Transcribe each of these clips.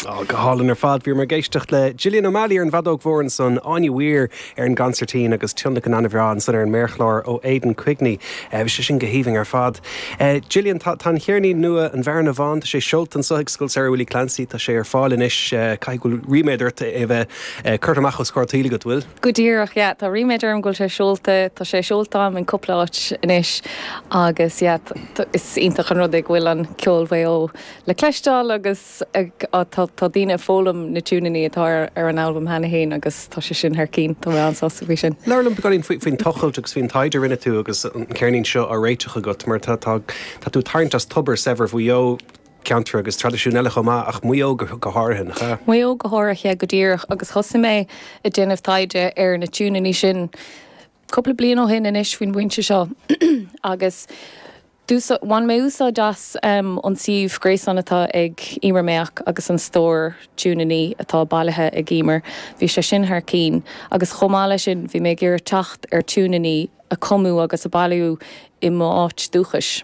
Ó, go hálainn ar fad. Bhíomar ag éisteacht le Gillian O'Malley ar an bhfeadóg mhór ansan, Áine Weir ar an gconsairtín agus tionlacan ana-bhreá ansan ar an méarchlár ó Aidan Quigney. Bhí sé sin go haoibhinn ar fad. Gillian, tá an ceirnín nua, An Bhearna Bhán, tá sé seolta anseo ag Scoil Samhraidh Willie Clancy, tá sé ar fáil anois. Caithfidh go bhfuil ríméad ort é a bheith curtha amach os comhair an tsaoil agat, bhfuil? Go díreach, yeah. Tá ríméad orm go bhfuil sé seolta. Tá sé seolta a'm in cúpla áit anois agus yeah, is iontach an rud é go bhfuil ceol Mhaigh Eo le cloisteáil agus tá daoine ag foghlaim na tiúineannaí atá ar an albam cheana féin agus tá sé sin thar cinn. Tá mé an-sásta faoi sin. Labhair liom beagáinín faoin tochailt agus faoin taighde a rinne tú agus an ceirnín seo á réiteach agat mar tá tú ag tarraingt as tobar saibhir Mhaigh Eo. ceantair agus traidisiúin eile chomh maith, ach Maigh Eo go háirithe, nach ea? Maigh Eo go háirithe, go díreach, agus thosaigh mé ag déanamh taighde ar na tiúineanna sin cúpla bliain ó shin anois faoin bpointe seo agus d'úsáid, bhain mé úsáid as an suíomh gréasáin atá ag Emer Mayock agus an stór tiúineanna atá bailithe ag Emer, bhí sé sin thar cinn, agus chomh maith leis sin bhí mé ag iarraidh teacht ar tiúineanna a cumadh agus a bailíodh i m'áit dúchais.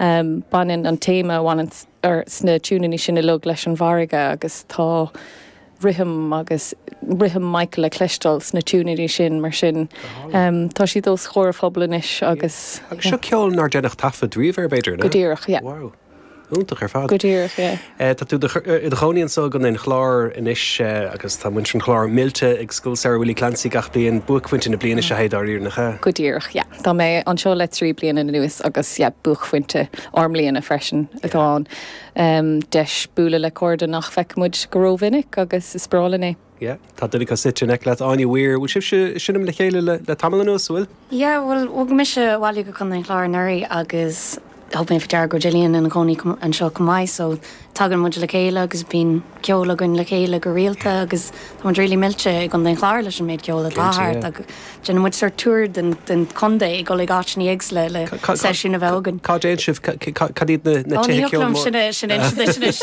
Baineann an téama a bhaineann leis na tiúineanna sin uilig leis an bhfarraige agus tá rithim agus rithim Michael le cloisteáil sna tiúineanna sin, mar sin tá siad os comhair an phobail anois agus. Agus seo ceol nár deineadh taifead riamh air, b'fhéidir, an ea? Go díreach, yeah. Wow. Iontach ar fad. Go díreach, yeah. Tá tú i do chónaí anso i gContae an Chláir anois agus tá muintir an Chláir millte ag Scoil Samhraidh Willie Clancy gach bliain. Buaicphointe na bliana seo é dáiríre, nach ea? Go díreach, yeah. Tá mé anseo le trí bliana anuas agus yeah, buaicphointe ár mbliana freisin atá ann. Deis bualadh le cairde nach bhfeicimid go rómhinic agus is breá linn é. Yeah, tá duine acu suite in aice leat, Áine Weir. Bhfuil sibhse ag seinm le chéile le tamall anuas, bhfuil? Yeah, bhuel, bhog mise abhaile go Contae an Chláir anuraidh agus thug mé faoi deara go raibh Gillian ina cónaí anseo chomh maith so tagann muid le chéile agus bíonn ceol againn le chéile go rialta agus tá muid really millte i gContae an Chláir leis an méid ceoil atá thart agus déanann muid sórt tour den chontae ag dul ag áiteanna éagsúla le seisiúin a bheith againn. Cá dtéann sibh? Cad iad na tithe ceoil móra? Ní thiocfadh liom sin a insint anois.